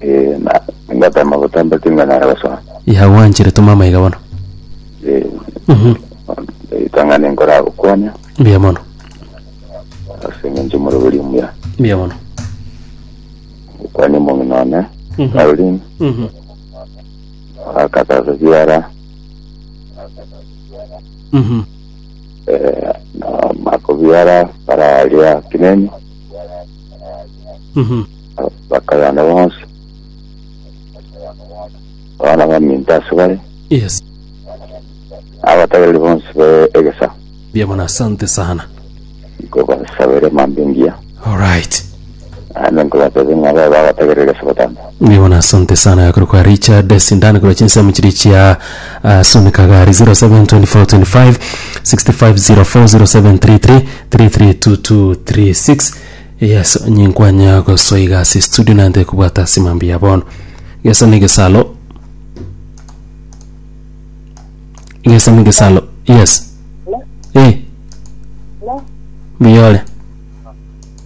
Eh, na ngatama gotamba tinga nare gosoma. ya gwanchire toma amaiga bono Eh, Mhm. itang'ana enkora gokwania mbuya mono ase eng'encho moroberi omuya. mbuya mono Gokwania omong'ina one, Mhm. Caroline, Mhm. akatasa siara, Mhm. eh, na makobiara, bararia kinenyo, Mhm. bakayana bonsi abana baminto ase bare Yes. abatagereri bonsi be egesa Mbuya mono, asante sana. nkobasabere mambia engiya Alright. ande nkobatebe ng'a babe abatagereri ase obotambe Nigo na asante sana yakore kwa Richard Sindani kora chinsemo chiri chia ah, Soni Kagari 072425 6504 0733332236 yes nyinkwanya gosoiga ase studio nante kubwata ase mambi ya bono gesa ne gesalo gesa ne gesalo yes eh biyore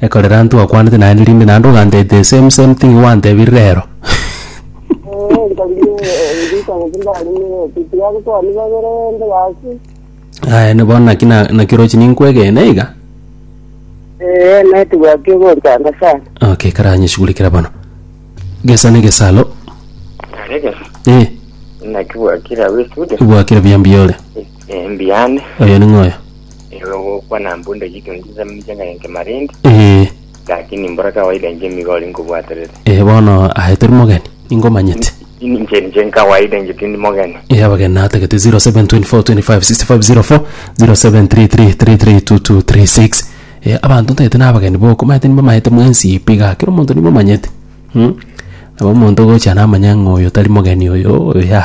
Ekorera ntwakwanete naende rinde naende ogantebia the same same thing gwantebire rero. Eh, nkarigwe rita gose ndarumire otiti yabo twani babere rende gasi. Aye ne bono naki na- naki orochi ninkwegene iga. Eh, neti gwaki ogontanga sana. Okay, karanyeshugulikera bono. Gesa ne gesalo. Arega, Eh, naki gwakira we studio. bwakire buya mbuya ore. Eh, mbiane. Oyo ning'oyo. Nigo ogokwana mbu ndagitwe nchisa mincha ng'aye nke marindi, Ee, lakini mbora kawaida inche nigo ore nkobwaterete. ee, bono aye tori mogeni, ningomanyete. Ini inche ninche nkawaida inche tindi mogeni. Ee, abageni natagete 0724256504, 0733332236. Ee, abanto ntagete nabageni boko, maete nibamaete mwensi eye pi igaa, kera omonto nimomanyete. Mh, nabo omonto ogocha namanya ng'a oyo tari mogeni oyo, oyo ya.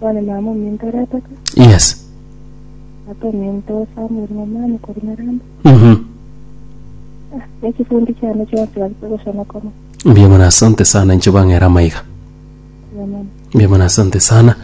One mama omintoreteka, Yes. ata ominto Samuel ng'omani korwa Nyaramba. Mhm. Ah, ne chifundi chiane chionsi bagete gosonokoma. Mbuya mono asante sana inche bang'era amaiga. Amen. Mbuya mono asante sana.